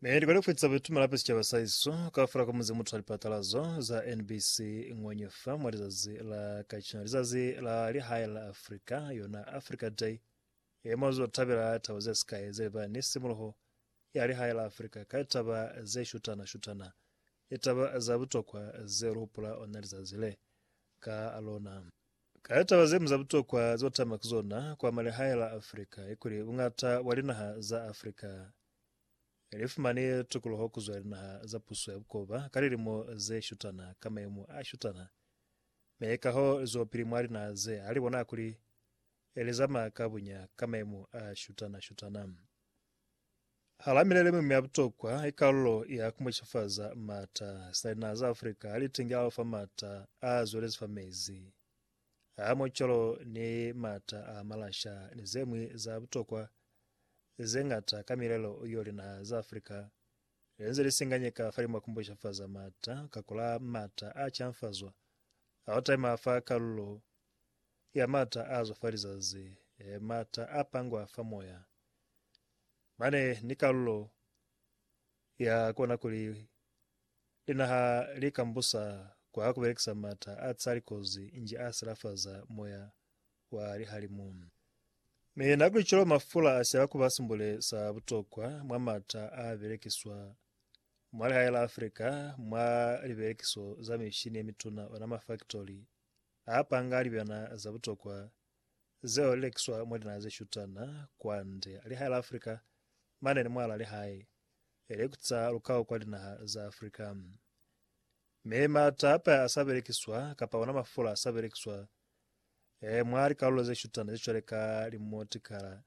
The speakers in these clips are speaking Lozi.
Ne likali kufitisa bitu malape sicaba sa iso kafula ka muzi muthu wa lipatalazo za NBC ngwenye fa mwa lizazi la kacina lizazi la lihae la Afrika yona Africa Day ye mwa zo tabela taba ze sikae ze ba ni simuluho ya lihae la Afrika ka taba ze shutana shutana litaba za butokwa ze lu hupula ona lizazi le ka lona Ka litaba ze ñwi za butokwa ze utama ki zona kwa malihae la Africa ki kuli buñata bwa linaha za Africa li fumani tukuluho ku zwa linaha za puso ya bukoba ka lilimo ze shutana ka mayemo a shutana, mi kaho li zwelopili mwa linaha ze ha li bona kuli li zamaya ka buña ka mayemo a shutana-shutana. Hala milelo mi mya butokwa i kalulo ya ku mucifaza maata. Sina linaha za Africa ha li tingela ufa maata a zwelezi fa mezi, a mucolo ni maata a malasha ni ze ñwi za butokwa ze ñata ka milelo yo linaha za Africa li nze li singanyeka fa limwa ku mucifaza maata ka kula maata a canfazwa a ku taima fa kalulo ya mata a zwa fa lizazi, mata a pangwa fa moya. Mane ni kalulo ya kona kuli linaha li kambusa kwa ku belekisa mata a tsali kozi nji a silafaza moya wa lihalimu. Mi na kuli cwalo mafula a siaba kuba simbule sa butokwa mwa mata a belekiswa mwa lihae la Africa mwa libelekiso za mishini ye mituna, ona mafaktori A panga libena za butokwa zeo li lekiswa mwa dinaha ze shutana kwande lihae la Afrika mane ni mwala lihae li kutisa lukau kwa dinaha za Afrika. Mi matape a sa belekiswa kapa ona mafula a sa belekiswa mwa likalulo ze shutana ze cwale ka limotikala.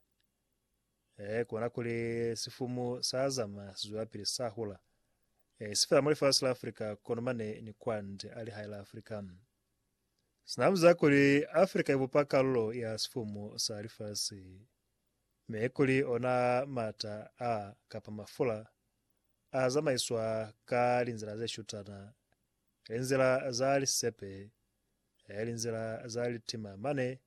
Ee, kona kuli sifumu sa zama si zwelapili sa hula. Ee, si fela mwa lifasi la Afrika, kono mane ni kwande a lihae la Afrika. Sina buza kuli Afrika i bupa kalulo ya sifumu sa lifasi, mi kuli ona mata a, kapa mafula, a zamaiswa ka linzila ze shutana, linzila za lisisepe, ee, linzila za litima mane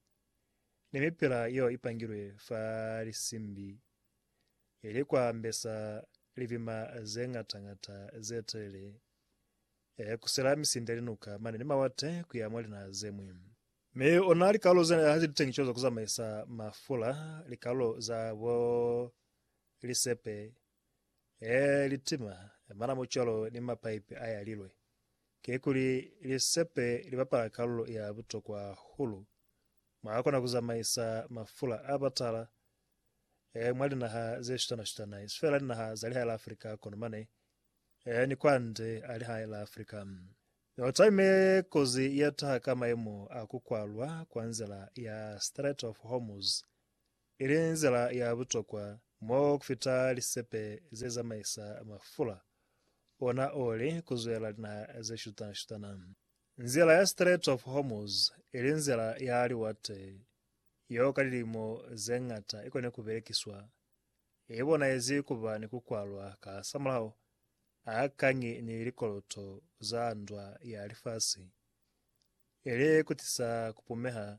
ni mipila yeo i pangilwe fa lisimbi ye li kwa mbesa lipima ze ŋata-ŋata ze telele e kusela misindi ya linuka mane ni mawate ku ya mwa linaha ze ñwi. Mi ona likalolo zena ha ze li teñiswa za ku zamaisa mafula, likalolo za bo lisepe e litima, manamu cwalo ni mapaipi a yalilwe, kikuli lisepe li bapala kalulo ya butokwa hahulu mwa kona ku zamaisa mafula a batala e mwa linaha ze shutana-shutana, isifela linaha za lihai la Afrika kono mane e ni kwande a lihai la Afrika. No taime kozi ye taha ka mayemo a ku kwalwa kwa nzila ya Strait of Hormuz ili nzila ya butokwa mo kufita lisepe ze zamaisa mafula, ona o li ku zwela linaha ze shutana-shutana. Nzila ya Strait of Hormuz, ili nzila ya liwate yeo ka lilimo ze ñata i koni ku belekiswa, i bonahezi ku ba ni ku kwalwa ka hasamulaho a kañi ni likoloto za ndwa ya lifasi, ili ku tisa ku pumeha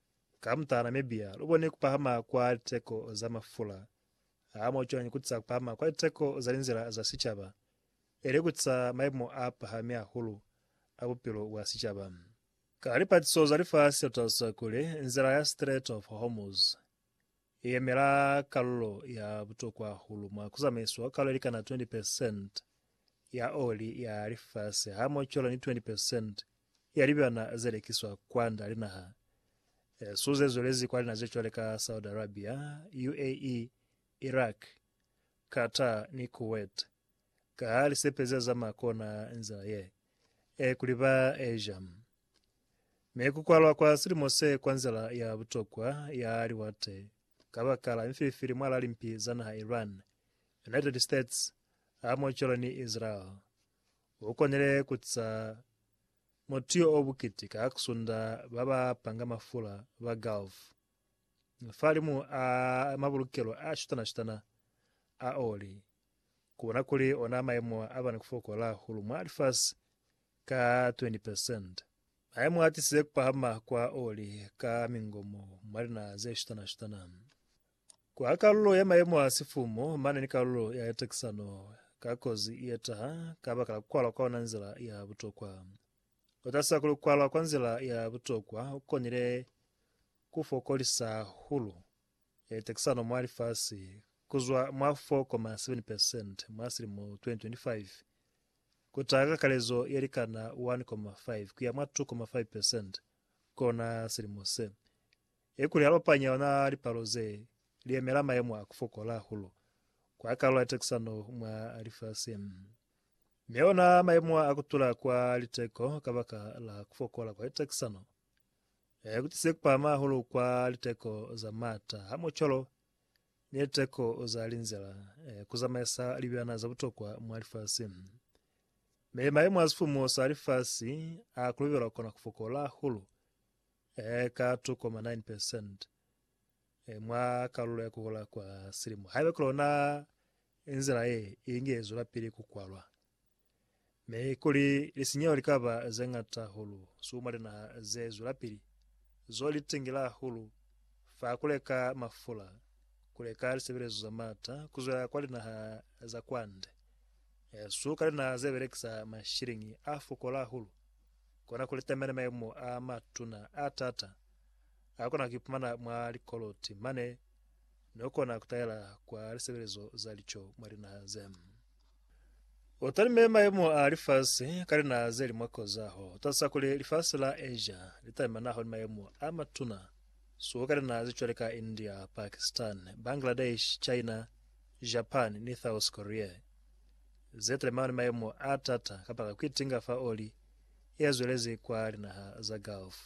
Ka mutala Namibia, lu bone ku pahama kwa liteko za mafula. Ha mwa cwañi ku tisa ku pahama kwa liteko za linzila za sicaba, ili ku tisa maimo a pahami hahulu a bupilo bwa sicaba? Ka lipatiso za lifasi lu talusa kuli, nzila ya Strait of Hormuz, Ye yemela kalulo ya butokwa hahulu mwa ku zamaiswa kalo ye likana 20 percent ya oli ya lifasi hamocola ni 20 percent ya libyana ze lekiswa kwanda linaha esu ze zwelezi kwa linaha ze cwale ka Saudi Arabia, UAE, Iraq, Qatar ni Kuwait. Ka ha li sepeza za ma kona nzila ye e kuli ba eja mi ku kwalwa kwa silimo se kwa nzila ya butokwa ya liwate kabakala mifilifili mwala limpi za naha Iran, United States ha mocolo ni Israel. U konile ku tsa motiyo o bukiti ka kusunda ba ba panga mafula ba Gulf. Fahalimu a mabulukelo a shutana-shutana a oli, kubona kuli ona maemo a bana kufokola hahulu mwa lifasi ka 20%. Maemo a tisize kupahama kwa oli ka mingomo mwa linaha ze shutana-shutana. Kwa kalulo ya maemo a sifumu, mane ni kalulo ya litekisano ka kozi ietaha kabakala kukwalwa kwa ona nzila ya butokwa. Ku tasa ku lukwalwa kwa nzila ya butokwa ku konile ku fokolisa hahulu tekisano mwa lifasi ku zwa mwa 4.7 percent mwa silimo 2025 ku taha ka kalezo ye likana 1.5 ku ya mwa 2.5 percent kona silimo se, ikuli ha lopanya ona lipalo ze li yemela mayemo a ku fokola hahulu kwa kalulo ya tekisano mwa lifasi. Mi ona maemo a kutula kwa liteko kabaka la kufokola kwa litakisano, a kutise kupahama hahulu kwa liteko za maata a mucolo ni liteko za linzila ku zamaisa libyana za butokwa mwa lifasi. Mi maemo a sifumu sa lifasi a kulubelwa kona kufokola hahulu ka 2.9 percent. e, mwa kalulo ya kuhola kwa silimo, haiba ki lona nzila ye inge zwelapili ku kwalwa, mi kuli lisinyeho li ka ba ze ñata hahulu su mwa linaha ze zwelapili, zo li tingela hahulu fa ku leka mafula, ku leka lisebelezo za maata, ku zwela kwa linaha za kwande, e, su ka linaha ze belekisa mashiliñi a fokola hahulu, kona ku litamela mayemo a matuna a taata. Ha kona kuipumana mwa likoloti mane no kona kutaela kwa lisebelezo za lico mwa linaha ze. U talime maemo a lifasi ka linaha ze li mwa kozaho. U talusa kuli lifasi la Asia li talimanaho ni maemo a matuna suku ka linaha ze cwale ka India, Pakistan, Bangladesh, China, Japan ni Thous Korea, ze talimaho ni maemo a t'ata kabaka kuitinga fa oli ye zwelezi kwa linaha za Gulf.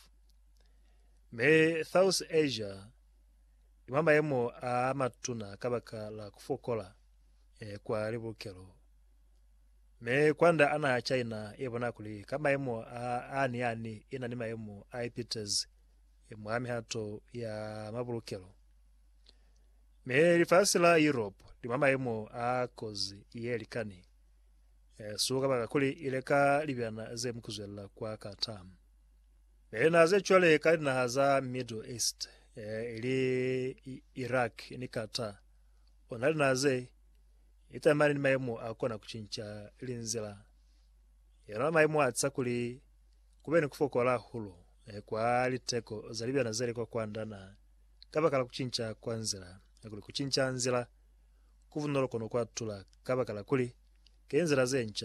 Mi South Asia i mwa mayemo a matuna kabaka la ku fokola eh, kwa libulukelo. Mi kwanda a naha ya China i bona kuli ka mayemo a ani ani i na ni mayemo a ipitezi eh, mwa mihato ya mabulukelo. Mi lifasi la Europe li mwa mayemo a kozi ye likani eh, su kabaka kuli ile ka libyana ze mu kuzwella kwa Qatar. Ee, na ze cwale ka linaha za Middle East, ee, ili Iraq ni Qatar, ona linaha ze itamani ni maemo a kona kucinca ili nzila yona maemo a tsa kuli kube ni kufokola hahulu ee, kwa liteko za libyana zeli kwa kwanda na kabaka la kucinca kwa nzila, ya kuli kucinca nzila kubunolo kono kwa tula kabaka la kuli ke nzila ze nca.